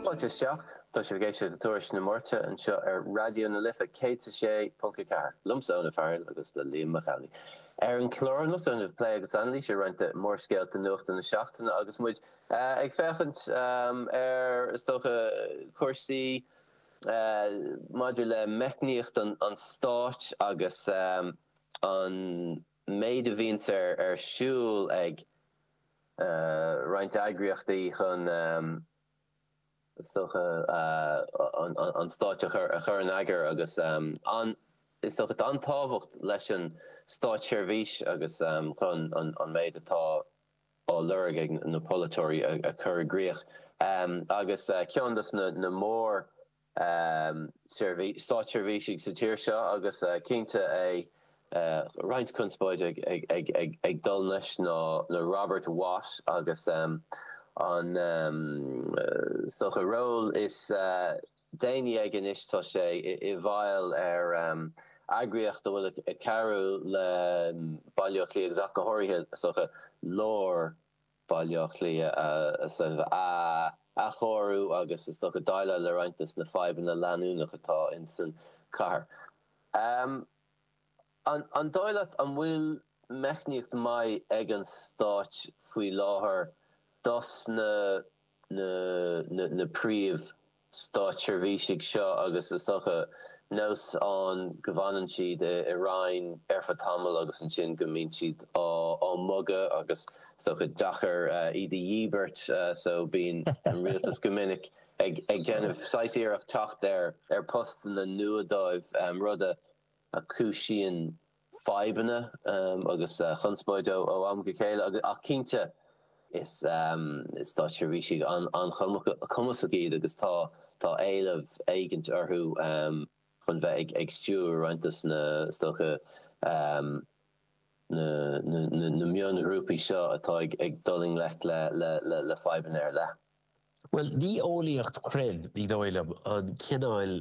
Fáilte isteach. Tá sibh ag éisteacht le Tuairisc na Máirte anseo ar Raidió na Life 106.4, liomsa, Eoin Ó Fearghail, agus le Liam Mac Amhlaigh. Ar an chlár anocht déanfaimid plé agus anailís ar roinnt de mhórscéalta nuachta na seachtaine agus muid ag féachaint ar is dócha, cúrsaí maidir le meicníocht an stáit agus an. méid a bhíonns ar siúl ag roinnt eagraíochtaí chun is dócha an stáit a chur in eagar agus is dócha an tábhacht leis an státseirbhís agus chun an méid atá á lorg ag na polaiteoirí a chur i gcrích. Agus ceann dos na mór státseirbhísigh sa tír seo agus cinnte é roinnt conspóide ag dul leis ná Robert Watt agus an is dócha ról is déanaí aige anois tá sé i bhfeighil ar eagraíocht a bhfuil ag cabhrú le Baile Átha Cliath agus ach go háirithe is dócha lár Baile Átha Cliath a athchóiriú agus is dócha déileáil le roinnt dos na fadhbanna leanúnach atá insan cathair. An dóigh leat an bhfuil meicníocht maith ag an stáit faoi láthair dos na na príomh. státseirbhísigh seo agus is dócha nós ann go bhfanann siad i Roinn ar feadh tamaill agus ansin go mbíonn siad á mbogadh agus is dócha deacair iad a dhíbirt so bíonn an rialtas go minic ag déanamh saghas iarracht teacht ar postanna nua dóibh rud a chúisíonn fadhbanna agus chonspóid ó am go chéile ach cinnte is státseirbhísigh an-chumasach iad agus tá tá éileamh éigint orthu chun bheith ag stiúir roinnt dos na is dócha na mionghrúpaí seo atá ag dul i ngleic le fadhbanna ar leith. Bhuel, ní eolaíocht chruinn, ní dóigh liom, an cineál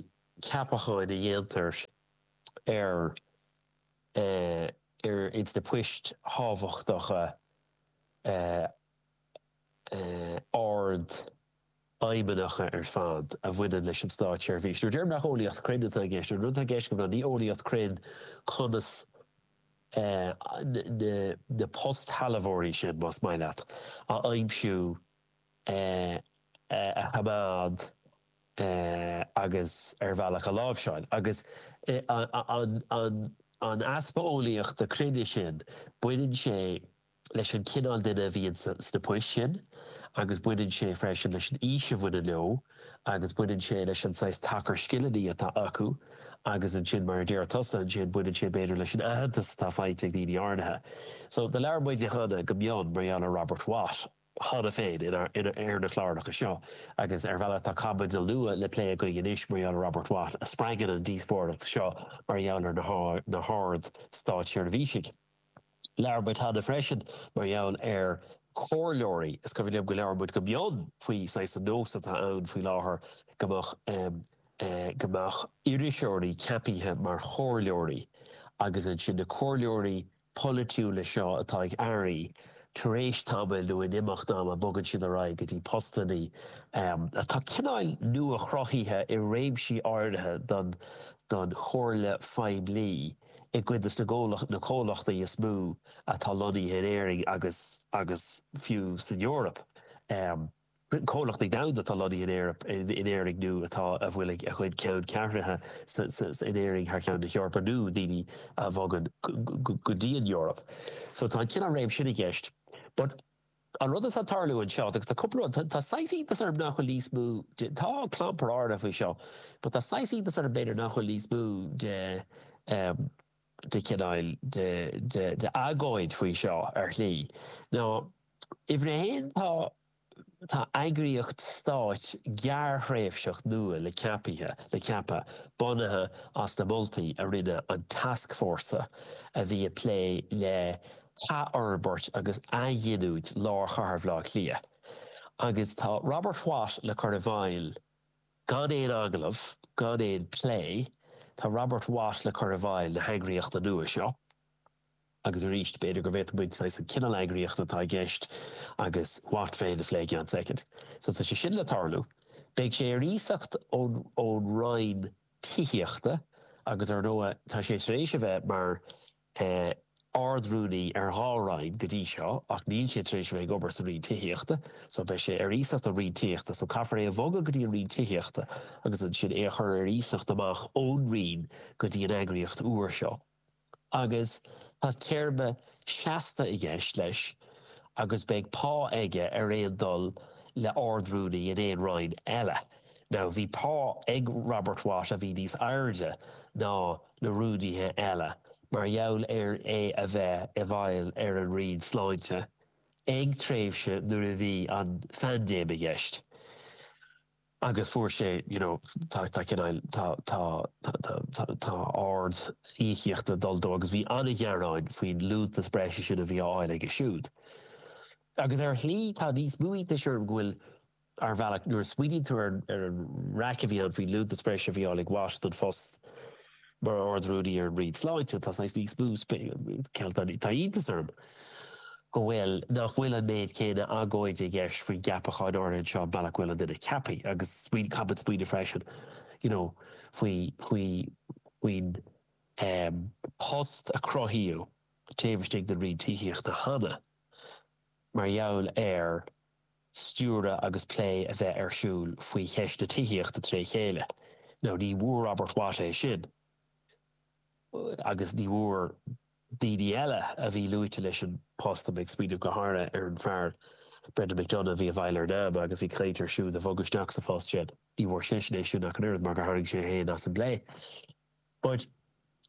ceapacháin a dhéantar ar ar ins na poist thábhachtacha ardfheidhmeannacha ar fad a bhaineann leis an státseirbhís. Nuair a deirim nach eolaíocht chruinn atá i gceist, an rud atá i gceist agam ná ní eolaíocht chruinn conas na na postshealbhóirí sin, más maith leat, a aimsiú, a choimeád, agus ar bhealach a láimhseáil. Agus an easpa eolaíocht chruinn sin, baineann sé leis an cineál duine a bhíonn sna poist sin agus baineann sé freisin leis an aois a bhaineann leo agus baineann sé leis an saghas tacar scileanna atá acu agus ansin, mar a deir tusa, ansin baineann sé b'fhéidir leis an aitheantas atá faighte ag daoine áirithe. So labhair muid cheana go mion mar gheall ar Robert Watt. cheana féin ar na cláracha seo agus ar bhealach tá caibidil nua le plé againn anois mar gheall ar Robert Watt a spreagann an díospóireacht seo mar gheall ar na hard státseirbhísigh. Labhair muid cheana freisin mar gheall ar chomhairleoirí. Is cuimhin liom go labhair muid go mion faoin saghas an nós atá ann faoi láthair go mbeadh go mbeadh iriseoirí ceapaithe mar chomhairleoirí agus ansin na comhairleoirí a polaitiúla seo atá ag airí, tar éis tamaill nó in imeacht ama bogann siad ar aghaidh go dtí postanna atá cineál nua-chruthaithe i réimsí áirithe don don chomhairle phoiblí i gcuid de na comhlachtaí is mó atá lonnaithe in Éirinn agus agus fiú san Eoraip. comhlachtaí domhanda atá lonnaithe in Éirinn, in Éirinn nó atá, a bhfuil a gcuid ceanncheathrúna in Éirinn thar cheann na hEorpa nó daoine a bhogann go dtí an Eoraip. So tá an cineál réim sin i gceist. But an rud atá ag tarlú anseo, agus tá cúpla rud, tá saghas iontas orm nach bhfuil níos mó de, tá clampar áirithe faoi seo, but tá saghas iontas orm b'fhéidir nach bhfuil níos mó de, de chineál de agóid faoi seo ar shlí. ná, uimhir a haon, tá tá eagraíocht stáit gearrthréimhseach nua le ceapaithe le ceapadh, bunaithe as na moltaí a rinne an tascfhórsa a bhí ag plé le hathfhorbairt agus athghiniúint lár chathair Bhaile Átha Cliath. Agus tá Robert Watt le cur i bhfeighil Gan aon agallamh, gan aon phlé, tá Robert Watt le cur i bhfeighil na heagraíochta nua seo. Agus arís, b'fhéidir go bhféadfadh muid saghas an cineál eagraíochta atá i gceist agus Watt féin a phlé i gceann soicind. So tá sé sin le tarlú. Beidh sé ar iasacht ón Roinn Tithíochta agus ar ndóigh tá sé tar éis a bheith mar Ard-Rúnaí ar dhá roinn go dtí seo ach níl sé tar éis a bheith ag obair sa Roinn Tithíochta so beidh sé ar iasacht ón Roinn Tithíochta so caithfear é a bhogadh go dtí an Roinn Tithíochta agus ansin é a chur ar iasacht amach ón Roinn go dtí an eagraíocht úr seo agus tá téarma seasta i gceist leis agus beidh pá aige ar aon dul le Ard-Rúnaí in aon roinn eile. Now bhí pá ag Robert Watt a bhí níos airde ná. na rúnaithe eile mar gheall ar é a bheith i bhfeighil ar an Roinn Sláinte ag tréimhse nuair a bhí an phaindéim i gceist agus fuair sé you know tá tá cineál tá tá tá tá ard íocaíochta dul dó agus bhí an-ghearáin faoin liúntas breise sin a bhí á fháil aige siúd agus ar shlí tá níos mó iontas orm go bhfuil Ar bhealach, nuair a smaoiníonn tú ar an raic a bhí ann faoin liúntas breise a bhí á fháil ag Watt don phost mar Ard-Rúnaí ar an Roinn Sláinte, tá saghas níos mó, tá iontas orm go bhfuil, nach bhfuil an méid céanna agóide i gceist faoin gceapachán áirithe anseo an bealach a bhfuil an duine ceaptha agus smaoiním, caithfidh muid smaoineamh freisin, you know, faoi faoi faoin bpost a cruthaíodh taobh istigh den Roinn Tithíochta cheana mar gheall ar. stiúradh agus plé a bheith ar siúl faoi cheist na tithíochta tré chéile. Now ní bhfuair Robert Watt é sin agus ní bhfuair daoine eile a bhí luaite leis an post, tá mé ag smaoineamh go háirithe ar an fear Brendan McDonagh a bhí i bhfeighil ar NAMA agus bhí caint ar siúd a bhogadh isteach sa phost sin, ní bhfuair seisean é sin ach an oiread mar gur tharraing sé fhéin as an bplé. But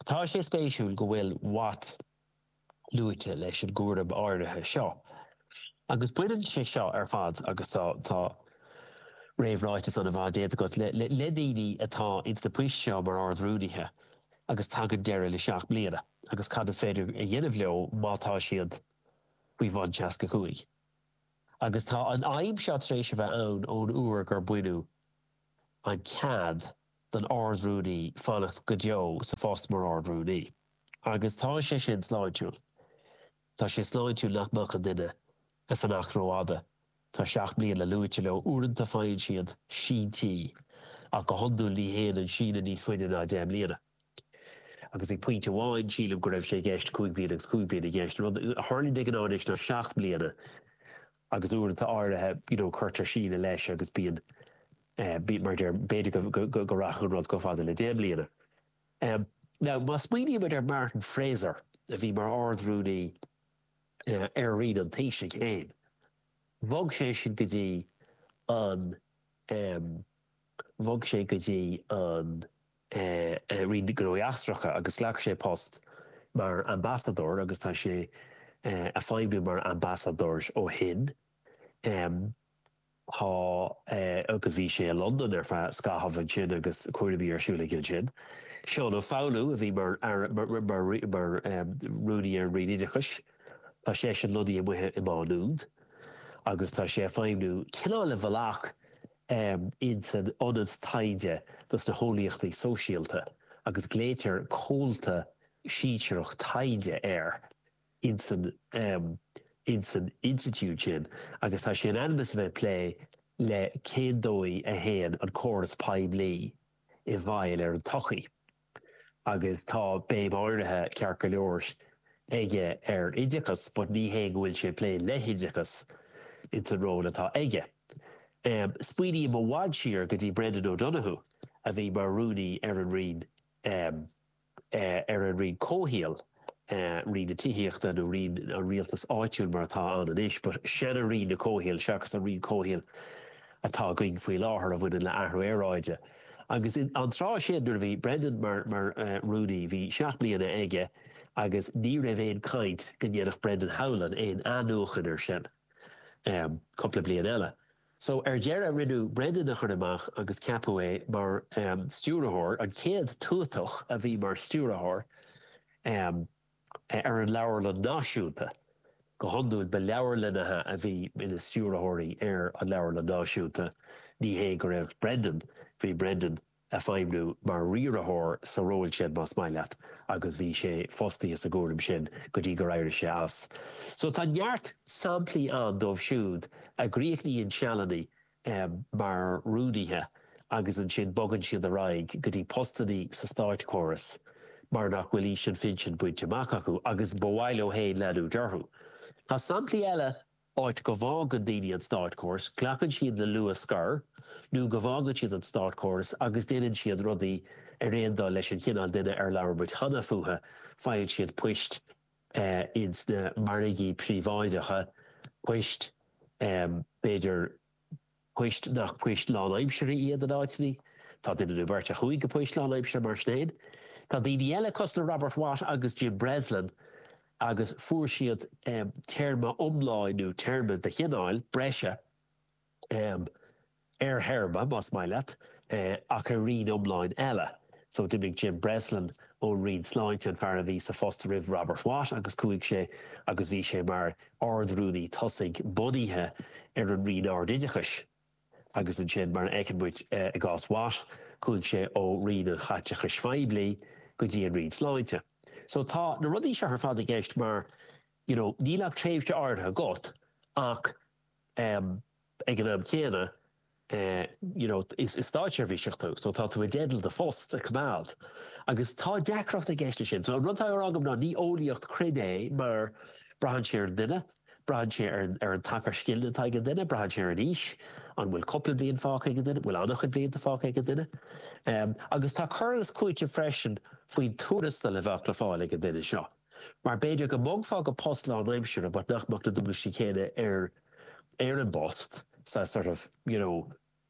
tá sé spéisiúil go bhfuil Watt. luaite leis an gcúram áirithe seo. Agus baineann sé seo ar fad, agus tá tá réamhráiteas an-fhada déanta agat, le daoine atá ins na poist seo mar Ard Rúnaithe agus tagann deireadh le seacht mbliana agus cad is féidir a dhéanamh leo má tá siad faoi bhun seasca cúig. Agus tá an fhadhb seo tar éis a bheith ann ón uair gur baineadh an cead don Ard Rúnaí fanacht go deo sa phost mar Ard Rúnaí. Agus tá sé sin sláintiúil. Tá sé sláintiúil nach mbeadh aon duine ag fanacht rófhada. Tá seacht mbliana luaite leo. Uaireanta faigheann siad síntí ach go hiondúil ní théann an síneadh níos faide ná deich mbliana. Agus ag pointe amháin sílim go raibh sé i gceist cúig bliana agus cúig bliana i gceist. Rud a tharlaíonn de ghnáth anois ná seacht mbliana agus uaireanta áirithe you know cuirtear síneadh leis agus bíonn mar a deir b'fhéidir go rachadh an rud chomh fada le deich mbliana. Now, má smaoinímid ar Martin Fraser, a bhí mar Ard-Rúnaí ar Roinn an Taoisigh féin, bhog sé sin go dtí an, bhog sé go dtí an Roinn Gnóthaí Eachtracha agus ghlac sé post mar ambasadóir agus tá sé a' feidhmiú mar ambasadóir ó shin. Tá agus bhí sé i Londain ar feadh scaithimh ansin agus cúraimí ar siúl aige ansin. Seán Ó Foghlú a bhí mar mar rúnaí ar an Roinn Oideachais. Tá seisean lonnaithe amuigh i Má Nuad agus tá sé ag feidhmiú cineál i bhfalach in san ionad taighde dos na heolaíochtaí sóisialta agus glaoitear comhalta sinsearach taighde air. ins an ins an institiúid sin agus tá sé in ainm is a bheith ag plé le cén dóigh a théann an córas poiblí i bhfeidhm ar an tsochaí agus tá béim áirithe, ceart go leor, aige ar oideachas but ní hé go bhfuil sé ag plé le hoideachas ins an ról atá aige. Smaoiním i bhfad siar go dtí Brendan O'Donoghue a bhí mar rúnaí ar an Roinn ar an roinn comhshaoil, roinn na tithíochta nó roinn an rialtais áitiúil mar atá ann anois, but seana roinn an chomhshaoil seachas an roinn comhshaoil atá againn faoi láthair a bhaineann le athrú aeráide. Agus an tráth sin nuair a bhí Brendan mar mar rúnaí bhí seacht mbliana aige agus ní raibh aon caint go ndéanfadh Brendan Howlin aon athnuachan ar sin cúpla bliain eile. So, ar deireadh, rinneadh Brendan a chur amach agus ceapadh é mar stiúrthóir, an chéad tuatach a bhí mar stiúrthóir ar an Leabharlann Náisiúnta. Go hiondúil, ba leabharlannaithe a bhí ina stiúrthóirí ar an Leabharlann Náisiúnta, ní hé go raibh Brendan, bhí Brendan ag feidhmiú mar riaraitheoir sa ról sin más maith leat agus bhí sé fostaithe sa gcúram sin go dtí gur éirigh sé as. So tá neart samplaí ann díobh siúd a gcríochnaíonn sealanna mar rúnaithe agus ansin bogann siad ar aghaidh go dtí postannaí sa státchóras mar nach bhfuil aois an phinsin bainte amach acu agus ba mhaith leo féin leanúint orthu. Tá samplaí eile áit go bhfágann daoine an státchóras, glacann siad le luathscor nó go bhfágann siad an státchóras agus déanann siad rudaí ar aon dul leis an chineál duine ar labhair muid cheana fúthu, faigheann siad poist ins na margaí príobháideacha, poist b'fhéidir poist nach poist lánaimseartha iad in áiteanna. Tá duine nó beirt a chuaigh go poist lánaimseartha mar sin féin. Tá daoine eile, cosúil le Robert Watt agus Jim Breslin, agus fuair siad téarma iomlán nó téarma de chineál breise ar théarma, más maith leat, ach ar roinn iomlán eile. So d'imigh Jim Breslin ón Roinn Sláinte, an fear a bhí sa phost roimh Robert Watt, agus chuaigh sé agus bhí sé mar Ard-Rúnaí tosaigh bunaithe ar an Roinn Ard-Oideachais. Agus ansin, mar a fheiceann muid i gcás Watt, chuaigh sé ó Roinn an Chaiteachais Phoiblí go dtí an Roinn Sláinte. So tá na rudaí seo ar fad i gceist mar, you know, níl ach tréimhse áirithe agat ach, em, but ag an am céanna you know is stáitseirbhíseach tú so tá tú i dteideal do phost a coimeád agus tá deacracht i gceist leis sin. So an rud atá á rá agam ná ní eolaíocht cruinn é mar braitheann sé ar an duine, braitheann sé ar an ar an tacar scileanna atá ag an duine, braitheann sé ar an aois, an bhfuil cúpla bliain fágtha ag an duine, an bhfuil an-chuid blianta fágtha ag an duine. Agus tá cur agus cúiteamh freisin faoin tuarastal a bheadh le fáil ag an duine seo. Mar b'fhéidir go mbogfá go post lánaimseartha but nach mbeadh na dualgaisí céanna ar ar an bpost so sort of you know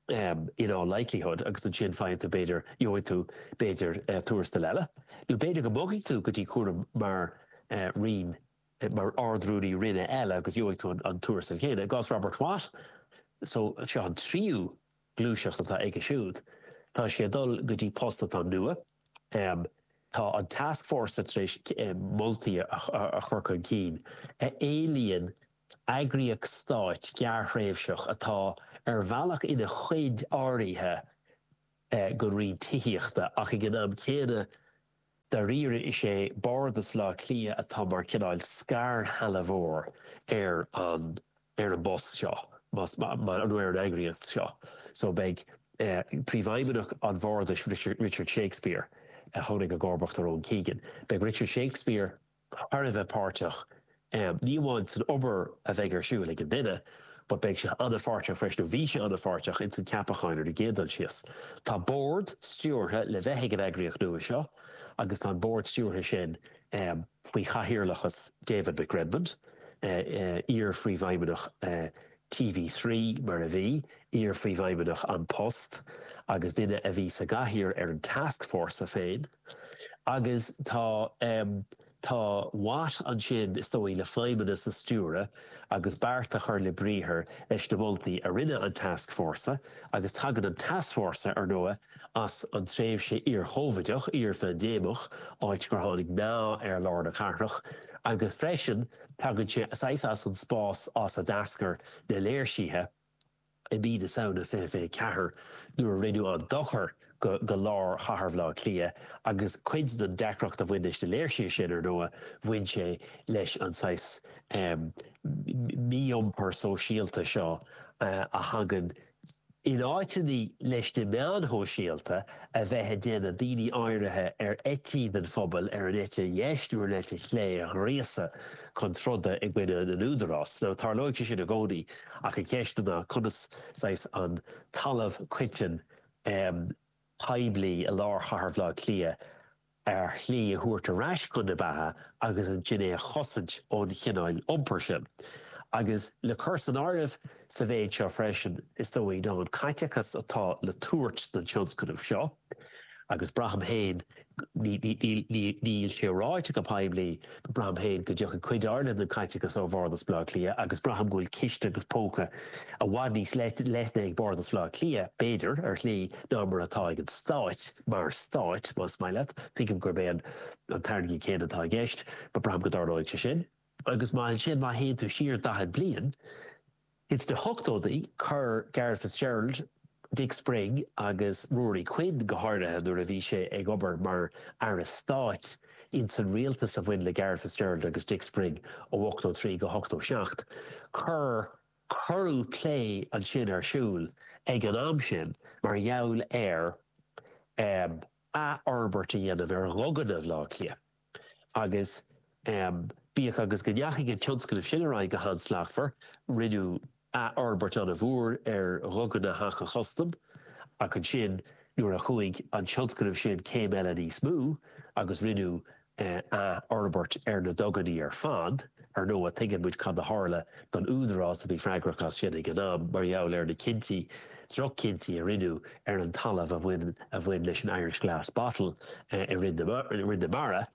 em in all likelihood agus ansin faigheann tú b'fhéidir gheobhaidh tú b'fhéidir eh tuarastal eile nó b'fhéidir go mbogfaidh tú go dtí cúram i eh roinn mar ardrúnaí roinne eile agus gheobhfadh tú an tuarastal chéanna. I gcás Robert Watt so seo an tríú gluaiseacht atá aige siúd. Tá sé ag dul go dtí post atá nua. Tá an task force tar éis moltaí a chur chun cinn a éilíonn eagraíocht stáit gearrthréimhseach atá ar bhealach ina chuid áirithe de roinn tithíochta ach ag an am céanna Dáiríre is é Bardas Bhleá Cliath atá mar cineál scairshealbhóir ar an ar an bpost seo nó ar an eagraíocht seo so beidh Príomhfheidhmeannach an Bhardais Richard Shakespeare a tháinig i gcomharbacht ar Owen Keegan, beidh Richard Shakespeare. thar a bheith páirteach, ní amháin san obair a bheidh ar siúl ag an duine, but beidh sé an-pháirteach freisin, nó bhí sé an-pháirteach ins an ceapachán ar an gcéad dul síos. Tá bord stiúrtha le bheith ag an eagraíocht nua seo agus tá an bord stiúrtha sin faoi chathaoirleachas David McRedmond, iar-phríomhfheidhmeannach an TV3, mar a bhí, iar-Phríomhfheidhmeannach An Post agus duine a bhí sa gcathaoir ar an tascfhórsa féin. Agus tá, em, tá Watt ansin, is dóigh, le feidhmeannas a stiúradh agus beart a chur le briathar leis na moltaí a rinne an tascfhórsa agus tagann an tascfhórsa, ar ndóigh, as an tréimhse iar-Chovideach, iar-phaindéimeach, áit gur tháinig meath ar lár na cathrach, agus freisin tagann sé saghas as an spás as a d'eascair na léirsithe i mí na Samhna 2024 nuair a rinneadh an dochar do lár chathair Bhleá Cliath agus cuid den deacracht a bhain leis na léirsithe sin ar ndóigh bhain sé leis an saghas mí-iompar sóisialta seo a thagann In áiteanna leis na meáin shóisialta a bheith ag déanamh daoine áirithe ar eití den phobal ar an eite dheis nó ar an eite chlé a ghríosadh chun troda i gcoinne an údarás. So tarlóidh sé sin i gcónaí ach an cheist ná conas saghas an talamh coiteann poiblí i lár chathair Bhleá Cliath a shlí a thabhairt ar ais chun na beatha agus ansin é a chosaint ón chineál iompair sin. Agus le cur san áireamh sa mhéid seo freisin, is dóigh, ná an caiteachas atá le tabhairt don tionscnamh seo, agus braithim féin, níl sé ráite go poiblí, Braithim féin go dtiocfaidh cuid áirithe den chaiteachas ó Bhardas Bhaile Átha Cliath agus braithim go bhfuil ciste agus póca i bhfad níos leithne ag Bardas Bhaile Átha Cliath, b'fhéidir, ar shlí, ná mar atá ag an stát, mar stát, más maith leat, tuigim gurb é an t-airgead céanna atá i gceist, braithim go dtarlóidh sé sin agus má ansin, má théann tú siar daichead bliain, Is sna hochtóidí chuir Garret Fitzgerald, Dick Spring agus Ruairí Quinn, go háirithe nuair a bhí sé ag obair mar Aire Stáit ins an rialtas a bhain le Garret Fitzgerald agus Dick Spring ó 83 go 87, chuir cuireadh plé ansin ar siúl ag an am sin mar gheall ar athfhorbairt a dhéanamh ar dhuganna Bhaile Átha Cliath. Agus bíodh agus go ndeachaigh an tionscnamh sin ar aghaidh go han-slachtmhar, rinneadh athfhorbairt an-mhór ar Dhuganna Theach an Chustaim, ach ansin nuair a chuaigh an tionscnamh sin céim eile níos mó agus rinneadh athfhorbairt ar na duganna ar fad, Ar ndóigh, tuigeann muid cad a tharla don údarás a bhí freagrach as sin ag an am mar gheall ar na cinntí, droch-chinntí a rinneadh ar an talamh a bhain a bhain leis an Irish Glass Bottle i Rinn na Rinn na Mara.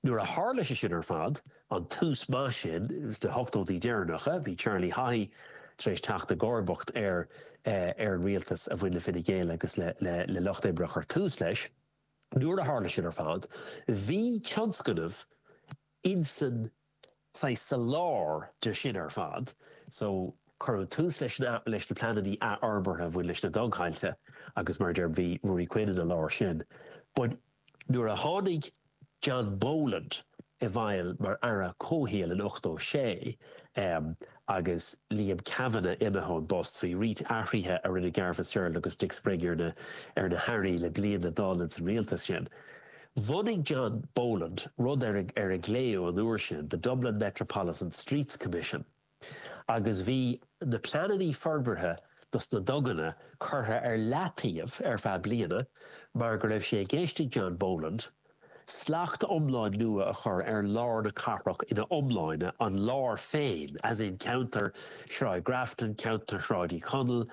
Nuair a tharla sé sin ar fad, an tús maith sin sna hochtóidí deireanacha, bhí Charlie Haughey tar éis teacht i gcomharbacht ar ar an rialtas a bhain le Fine Gael agus le le le Lucht Oibre a chuir tús leis. Nuair a tharla sin ar fad, bhí tionscnamh. Ansin saghas sa lár de sin ar fad, so cuireadh tús leis na leis na pleanannaí athfhorbartha a bhain leis na dugthailte agus mar a deirim bhí Ruairí Quinn ina lár sin but nuair a tháinig John Boland i bhfeighil mar Aire Comhshaoil in ochtó sé, em, Agus Liam Kavanagh imithe ón bpost, bhí roinnt athruithe a rinne Garret Fitzgerald agus Dick Spring ar na ar na hAirí le bliain a bhí fágtha ins an rialtas sin. Bhunaigh John Boland rud ar ar a glaodh an uair sin The Dublin Metropolitan Streets Commission agus bhí na pleananna forbartha dos na duganna curtha ar leataobh ar feadh bliana mar go raibh sé i gceist ag John Boland Slacht iomlán nua a chur ar lár na cathrach ina iomláine, an lár féin, as in ceantar Shráid Grafton, ceantar Shráid Uí Chonaill,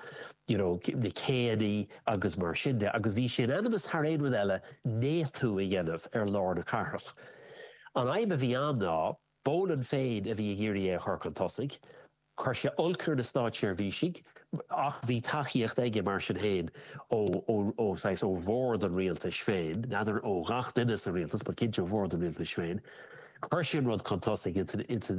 you know, na céanna agus mar sin de. Agus bhí sé in ainm is thar aon rud eile néatú a dhéanamh ar lár na cathrach. An fhadhb a bhí ann ná, Boland féin a bhí ag iarraidh é a chur chun tosaigh. Chuir sé olc ar na státseirbhísigh ach bhí tacaíocht aige mar sin féin ó bhord an rialtais féin, n'fheadar ó ghach duine sa rialtas but cinnte ó bhord an rialtais féin. Chuir sé an rud chun tosaigh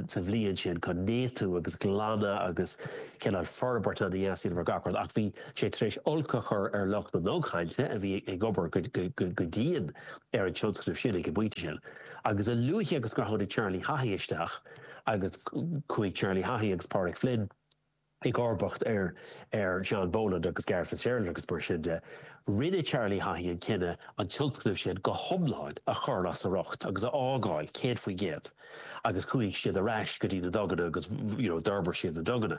sa bhliain sin chun néatú agus glanadh agus cineál forbairt a dhéanamh ar gach rud ach bhí sé tar éis olc a chur ar lucht na ndugthailte a bhí ag obair go dian ar an tionscnamh sin ag an bpointe sin. Agus a luaithe agus a tháinig Charlie Haughey isteach agus chuaigh Charlie Haughey agus Pádraig Flynn i gcomharbacht ar ar John Boland agus Garret Fitzgerald agus mar sin de, rinne Charlie Haughey an cinneadh an tionscnamh sin go hiomlán a chur as a riocht agus é a fhágáil céad faoin gcéad agus chuaigh siad ar ais go dtí na duganna agus you know d'fhorbair siad na duganna.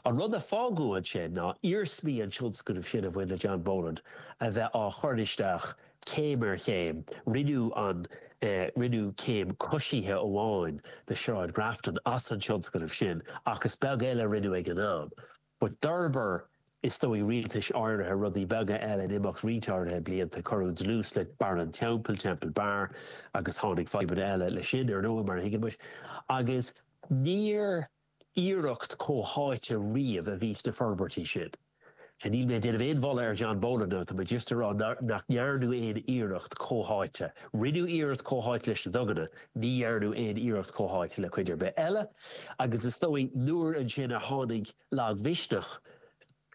An rud a fágadh ansin ná iarsmaí an tionscnaimh sin a bhain le John Boland a bheith á chur isteach céim ar chéim. Rinneadh an rinneadh céim coisithe amháin le Sráid Grafton as an tionscnamh sin ach is beag eile a rinneadh ag an am. But d'fhorbair is dóigh rialtais áirithe rudaí beaga eile in imeacht roinnt áirithe blianta. Cuireadh dlús le Barra an Teampaill, Temple Bar, agus tháinig fadhbanna eile leis sin, ar ndóigh, mar a thuigeann muid. Agus níor. iarracht comhtháite riamh a bhí sna forbairtí sin. Níl mé ag déanamh aon mholadh ar John Boland, tá mé just ag rá nach ndearnadh aon iarracht comhtháite. Rinneadh iarracht comhtháite leis na duganna, ní dhearnadh aon iarracht comhtháite le cuid ar bith eile agus is dóigh nuair ansin a tháinig lagmhisneach,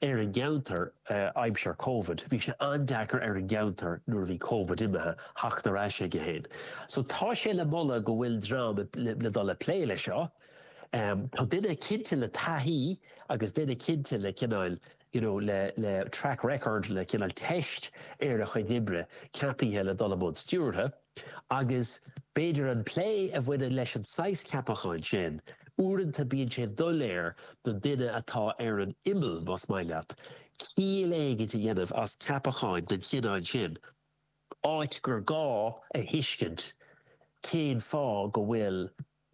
ar an gceantar aimsir Covid. Bhí sé an-deacair ar an gceantar nuair a bhí Covid imithe, theacht ar ais aige féin. So tá sé le moladh go bhfuil dream le dul ag plé leis seo. Tá duine cinnte le taithí agus duine cinnte le cineáil you know le le track record le cineál teist ar a chuid oibre ceapaithe le dul i mbun stiúrtha. Agus b'fhéidir an plé a bhaineann leis an saghas ceapacháin sin, uaireanta bíonn sé doiléir don duine atá ar an imeall, más maith leat, ciall éigin a dhéanamh as ceapacháin den chineál sin, áit gur gá a thuiscint cén fáth go bhfuil.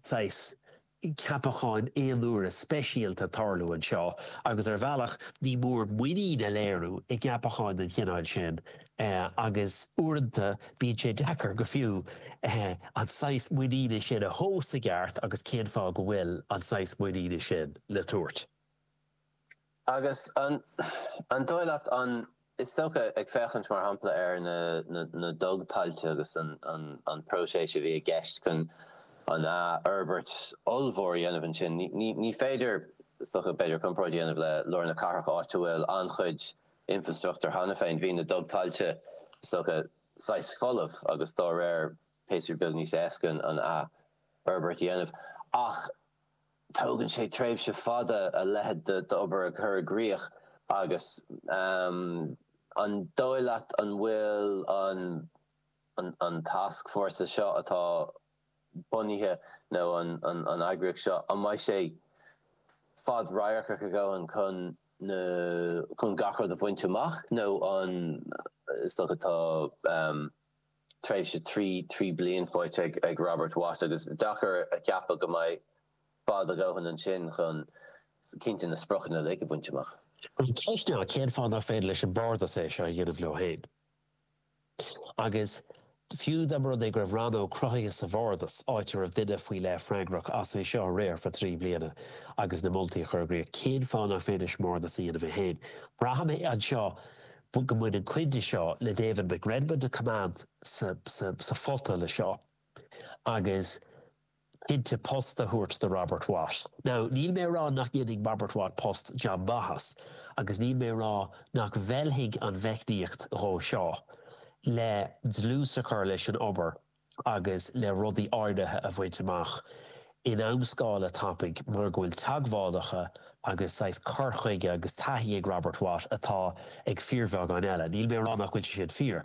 saghas ceapacháin aonuaire speisialta ag tarlú anseo agus ar bhealach ní mór muinín a léiriú i gceapacháin den chineál sin agus uaireanta bíonn sé deacair go fiú an saghas muiníne sin a thomhas i gceart agus cén fáth go bhfuil an saghas muiníne sin le tabhairt. Agus an dóigh leat an, is dócha, ag féachaint mar shampla ar na na dugthailte agus an an an phróiseas a bhí i gceist chun an fhorbairt ollmhór a dhéanamh ansin, ní ní ní féidir, is dócha, b'fhéidir comparáid a dhéanamh le Lár na Cathrach áit a bhfuil an-chuid infrastruchtúr cheana féin, bhí na dugthailte, is dócha, saghas folamh agus dá réir b'fhéidir beagán níos éasca an fhorbairt a dhéanamh. Ach. Tógann sé tréimhse fada a leithéid d'obair a chur i gcrích agus an dóigh leat an bhfuil an tascfhórsa seo atá bunaithe nó an eagraíocht seo, an mbeidh sé fadradharcach a dhóthain chun gach rud a bhaint amach nó an is dócha tá. tréimhse trí trí bliana faighte ag Robert Watt agus deacair a cheapadh go mbeidh fad a dhóthain ansin chun cinnte na spriocanna uilig a bhaint amach. An cheist ná cén fáth nach féidir leis an mBardas é seo a dhéanamh leo féin? Agus fiú dá mba rud é go raibh rannóg cruthaithe sa Bhardas, áit a raibh duine faoi leith freagrach as é seo a riar for trí bliana agus na moltaí a chur i gcrích, cén fáth nach féidir leis an mBardas a dhéanamh é féin? Braithim anseo bhfuil go mbaineann cuid de seo le David McRedmond a choinneáil sa phota le seo agus cinnte post a thabhairt do Robert Watt. Now níl mé a rá nach ndéanfaidh Robert Watt post an-mhaith as agus níl mé a rá nach bhfeilfidh an mheicníocht dhó seo le dlús a chur leis an obair agus le rudaí áirithe a bhaint amach in amscála tapaidh mar go bhfuil teagmhálacha agus saghas cur chuige agus taithí ag Robert Watt atá ag fíorbheagán eile. Níl mé a rá nach bhfuil sé sin fíor.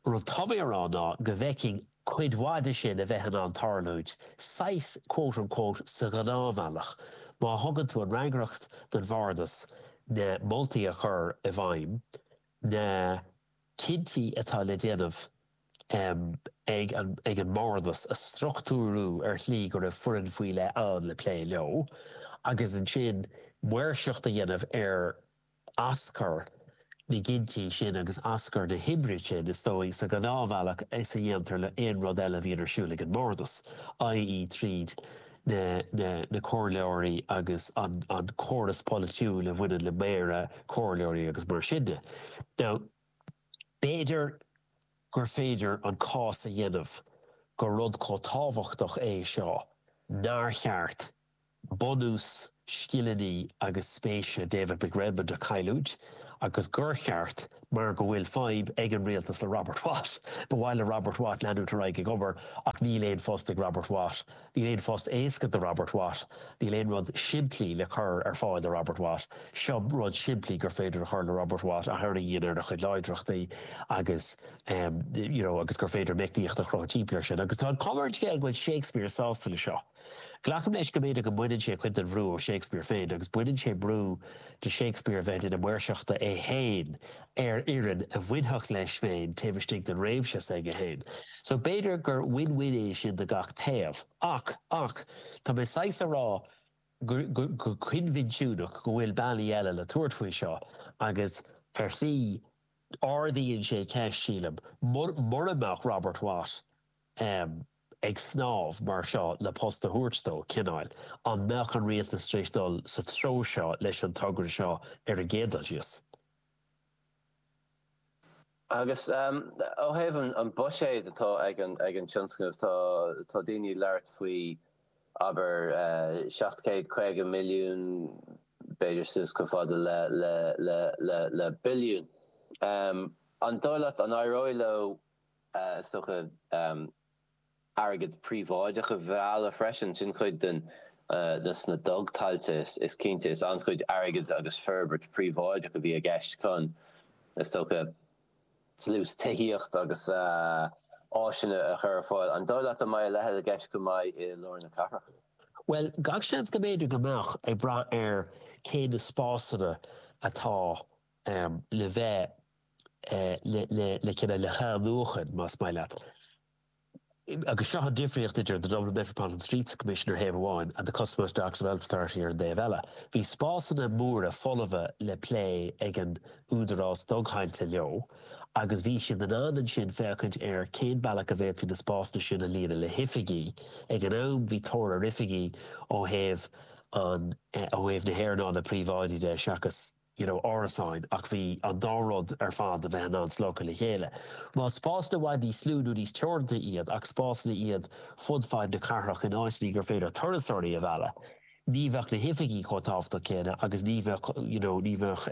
Rud tá mé a rá ná go bhfeicfinn cuid mhaith de sin a bheith in ann tarlúint saghas quote unquote sa ghnáthbhealach má thugann tú an fhreagracht don Bhardas na moltaí a chur i bhfeidhm, na cinntí atá le déanamh. ag an mBardas a struchtúrú ar shlí go raibh foireann faoi leith ann le plé leo agus ansin maoirseacht a dhéanamh ar aschur na gcinntí sin agus aschur na hoibre sin is dóigh sa ghnáthbhealach is a dhéantar le aon rud eile a bhíonn ar siúl ag an mBardas, i.e. tríd na comhairleoirí agus an córas polaitiúil a bhaineann le méara, comhairleoirí agus mar sin de. Now, B'fhéidir gur féidir an cás a dhéanamh gur rud chomh tábhachtach é seo nár cheart bunús scileanna agus spéise David McRedmond a chailliúint agus gur cheart, mar go bhfuil fadhb ag an rialtas le Robert Watt. Ba mhaith le Robert Watt leanúint ar aghaidh ag obair ach níl aon phost ag Robert Watt. Níl aon phost éasca do Robert Watt. Níl aon rud simplí le cur ar fáil do Robert Watt. Seo rud simplí gur féidir a chur roimh Robert Watt a tharraingíonn ar a chuid láidreachtaí agus you know agus gur féidir meicníocht a chruthú timpeall air sin. Agus tá an chuma ar an scéal go bhfuil Shakespeare sásta leis seo. Glacaim leis go mb'fhéidir go mbaineann sé cuid den bhrú de Shakespeare féin agus baineann sé brú de Shakespeare bheith i mbun maoirseachta é féin ar fhoireann a bhainfeadh leis féin taobh istigh den réimse s'aige féin. So b'fhéidir gur win win é sin do gach taobh. Ach, ach, tá mé saghas a rá go, go, go coinbhinsiúnach go bhfuil bealaí eile le tabhairt faoi seo agus ar shlí ardaíonn sé ceist, sílim, mura, mura mbeadh Robert Watt ehm ag snámh mar seo le post a thabhairt dó, cineáil, an mbeadh an rialtas tar éis dul sa treo seo leis an togra seo ar an gcéad dul síos? Agus ó thaobh an buiséid atá ag an tionscnamh, tá daoine ag labhairt faoi, abair, seacht céad caoga milliún, b'fhéidir suas chomh fada le billiún. An dóigh leat an éireoidh leo, is dócha, airgead príobháideach a mhealladh freisin. Sin cuid den, dos na dugthailte is cinnte. Is an-chuid airgid agus forbairt príobháideach a bhí i gceist chun, is dócha, dlús tithíocht agus áiseanna a chur ar fáil. An dóigh leat an mbeidh a leithéid i gceist chomh maith i lár na cathrach? Bhuel, gach seans go mb'fhéidir go mbeadh, ag brath ar cé na spásanna atá le bheith le cinneadh le hathnuachan más maith leat. Agus seo an difríocht idir The Dublin Metropolitan Streets Commission ar thaobh amháin and The Custom House Docks Development Authority ar an dtaobh eile. Bhí spásanna móra folamha le plé ag an údarás dugthailte leo agus bhí siad in ann ansin féachaint ar cén bealach a bhféadfaí na spásanna sin a líonadh le hoifigí. Ag an am bhí tóir ar oifigí ó thaobh na hearnála príobháidí de seachas You know árasáin ach bhí an dá rud ar fad le bheith in ann slogtha le chéile. Más spásanna i bhfad níos lú nó níos teoranta iad ach spásanna iad fud fad na cathrach in áiteanna gur féidir turasóirí a mhealladh ní bheadh na hoifigí chomh tábhachtach céanna agus ní bheadh you know ní bheadh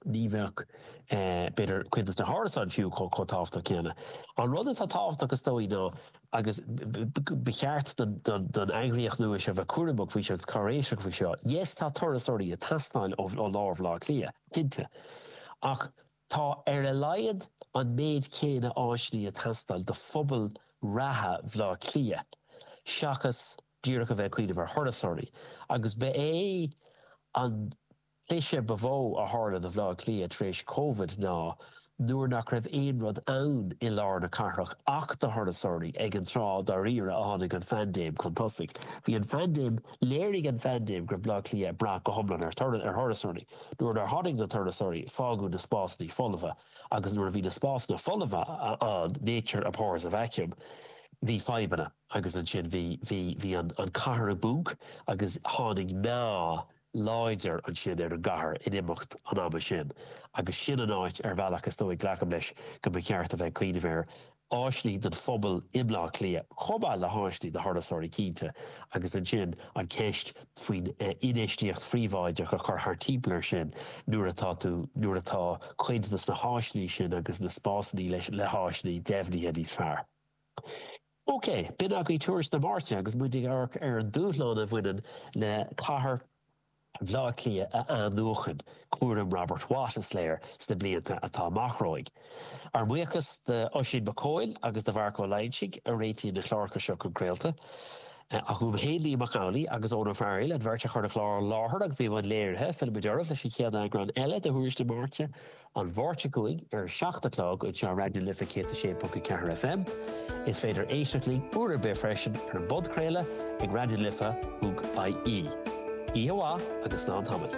ní bheadh b'fhéidir cuid de na hárasáin fiú chomh tábhachtach céanna. An rud atá tábhachtach is dóigh ná agus ba cheart don eagraíocht nua seo bheith cúramach faoi seo agus cáiréiseach faoi seo. Yes, tá turasóirí ag teastáil ó lár Bhaile Átha Cliath, cinnte, ach tá ar a laghad an méid céanna áiseanna ag teastáil do phobal reatha Bhaile Átha Cliath seachas díreach a bheith ag cuimhneamh ar thurasóirí agus ba é an An cliseadh ba mhó a tharla do Bhaile Átha Cliath tar éis Covid ná nuair nach raibh aon rud ann i lár na cathrach ach do thurasóirí, ag an tráth dáiríre a tháinig an phaindéim chun tosaigh. Bhí an phaindéim, léirigh an phaindéim go raibh Baile Átha Cliath ag brath go hiomlán ar thurasóirí. Nuair nár tháinig na turasóirí, fágadh na spásanna folamha agus nuair a bhí na spásanna folamha ann, nature abhors a vacuum, bhí fadhbanna agus ansin bhí, bhí, bhí an chathair i bponc agus tháinig meath. láidir ansin ar an gcathair in imeacht an ama sin agus sin an áit ar bhealach is dóigh, glacaim leis, go mba cheart a bheith ag cuimhneamh air. Áiseanna don phobal i mBleá Cliath chomh maith le háiseanna do thurasóirí, cinnte, agus ansin an cheist faoin infheistíocht phríobháideach a chur thart timpeall air sin nuair atá tú, nuair atá cuid dos na háiseanna sin agus na spásanna le haghaidh áiseanna deimhnithe níos fearr. OK, b'in agaibh tuairisc na Máirte agus muid ag amharc ar an dúshlán a bhaineann le cathair Bhaile Átha Cliath a athnuachan, cúram Robert Watt, is eile, sna blianta atá amach romhainn. Ár mbuíochas d'Oisín Mac Cóil agus do Mharc Ó Loingsigh a réitíonn na cláracha seo chun craolta. Ach uaim féin, Liam Mac Amhlaigh agus Eoghan Ó Fearghail, an bheirt a chuir an clár i láthair agus bhí i mbun léirithe, fillfimid oraibh leis an chéad eagrán eile de thuairisc na Máirte, an Mháirt seo chugainn ar a 7 a chlog anseo ar Raidió na Life 106.4 FM. Is féidir éisteacht linn uair ar bith freisin ar an bpodchraoladh ag raidionalife.ie. Oíche mhaith agus slán tamaill.